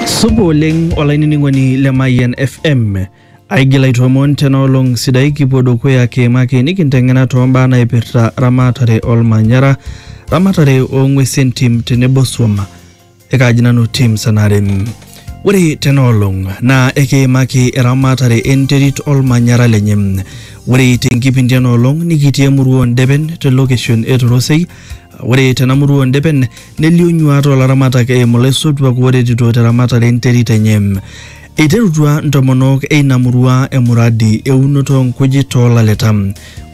Supa oleng olainining'oni le Mayian FM. Aigil aitoomon tena olong sidai kipuo dukuya kiimaki nikinteng'ena toombaa naipirta ramatare olmanyara, ramatare oong'uesi entim tenebo swam. Ekaaji nanu Tim Sanare. Ore tena olong naa ekiimaki eramatare enterit olmanyara lenye. Ore tenkipindi ena olong nikitii emurua oo Ndepen te location e Torosei Ore tena murua oo Ndepen nelio nyuaat oo laramatak eimu laisotuak ooretito te ramatare e nterit enye. Eiterutua ntomonok e ina murua emuradi e unoto oo nkujit too laleta.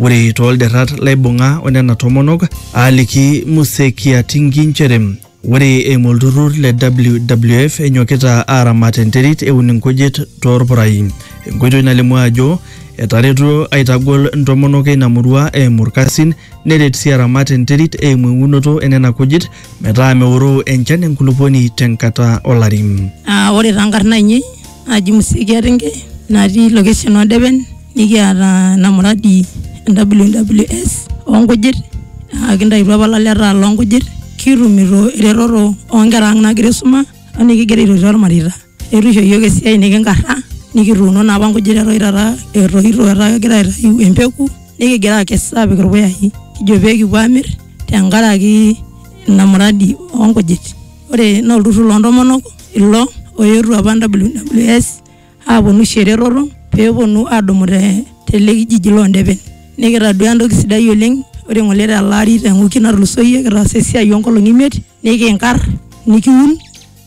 Ore too lderrat laibung'a o nena tomonok aaliki Muse Kiatingi nchere, Ore eimu olturrur le WWF enyokita aaramat enterit eun inkujit toorpurai. Enkoitoi nalimu ajo etaretuo aitagol ntomonok eina murua eimu ilkasin neret sii aramat enterit eimu eunoto enena kujit metaa meoroo enchan enkulupuoni tenkata olari. Ore taa nkarn aainei naji Musikia Ringe natii location oo Depen nikiata ena muradi e WWS oo nkujit naa kintaituo apa ilaleta loo nkujit kitumito eretoto oo nkera ang' naagira aisuma o nikigira aitotio irmareita. Eetu isho iyiok esiai nekinkarra nikituuno naa apa nkujit eton taata etoito etaa kegira aitayu empeku nekigira aakes aapik irpuyai kijo pee kipuo aamir tenkaraki ina muradi oo nkujit. ore naa olturrur loontomonok ilo oetuo apa WWS aaponu aisho eretoto peeponu aadumu te tele kijiji loondepen nikitaduaa entoki sidai oleng ore ng'ole tele ari te wiki natulusoyie kitaasa esiai oonkolong'i imiet nikinkarr nikiun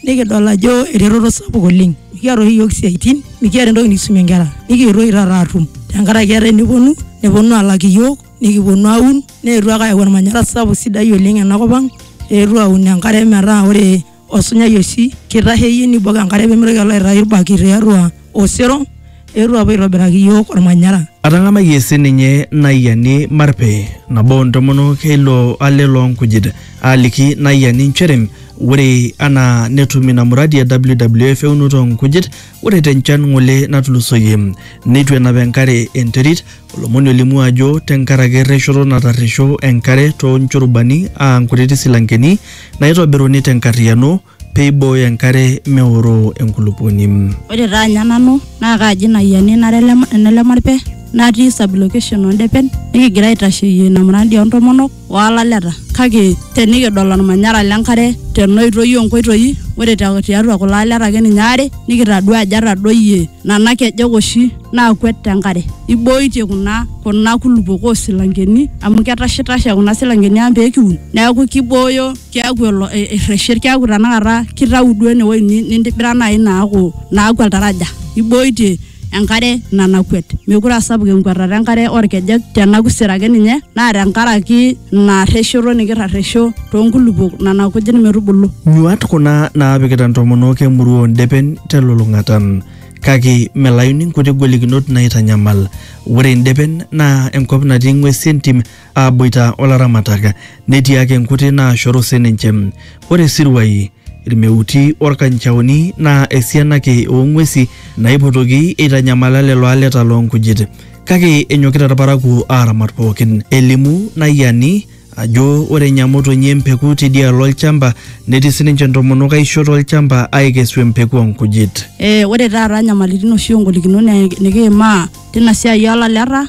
nikidol ajo eretoto sapuk oleng mikiata oshi iyiook isiaitin mikiata entoki nikisumie inkera nikietuo oshi taata aatum tenkaraki etaa eneponu neponu aalak iyiook. nikiponu aun neetuo ake ayau ormanyara sapuk sidai oleng enakop ang eetuo aun enkare metaa ore osunyai oshi kitasheyie nibok enkare pemitoki alo aitayu irbaki tiatua osero eetuo apuo aitobiraki iyiok ormanyara. Atang'amayie sininye Naiyiani Marpe, nabo oo ntomonok e ilo ale loo nkujit, aaliki Naiyiani nchere ore anaa netum ina muradi e WWF eunoto oo nkujit, ore te nchan ng'ole natulusoyie neitu enap enkare enterit, Olomoni olimu ajo tenkaraki erreshoto natarresho enkare too nchurubani aa nkutiti silankeni naaitobiruni te nkarriyiano pee eibooyo enkare meoroo enkulupuoni. Ore taa anya nanu naa kaaji ina ayiani nara ene Lemarpe natii sub-location oo Ndepen nikigira aitasheyie ina muradi oo ntomonok olaleta kake tenikidol olmanyara lenkare tenoitoi onkoitoi ore te- tiatua kulo aleta ake ninye aare nikitadua ajo etadoyie nana kejek oshi naakwet tenkare ibooitie kuna kuna kulupok osilankeni amu ketashitashe kuna silankeni ang pekiun neeku kibooyo keeku elo e- erreshet keeku tanakata kitau duo enewoi ni- nintibira naaji naaku naaku oltaraja ibooitie enkare nanakwet mekure asapuk enkwatata enkare orkejek tenakusir ake ninye naa tenkaraki ina rreshoto nikirrarresho toonkulupuok nana kujit metubulu Nyuat kuna naapikita ntomonok emurua oondepen telulung'ata. Kake melayuni nkuti golikinot naaitanyamal. Ore ndepen naa enkop natii ng'wesi entim aaboita o laramatak netii ake nkuti naashoru sininche. Ore isiruai, ilmeuti o lkanchaoni naa esiana ake oo ng'uesi naipotoki eitanyamala lelo aleta loo nkujit. Kake enyokita ilparakuo aaramat pooki. Elimu Nayiani ajo ore enya motonyi empeku teidialo olchamba netii sininche ntomonok aisho to lchamba aaikesu empeku oo nkujit. Ore taata nyamalitin oshi o ngolikinot nikiimaa teina siai oo laleta.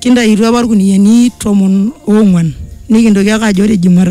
Kintaituo apa ilkuniani tomon oong'uan nikintoki ake ajo ore Jumatatu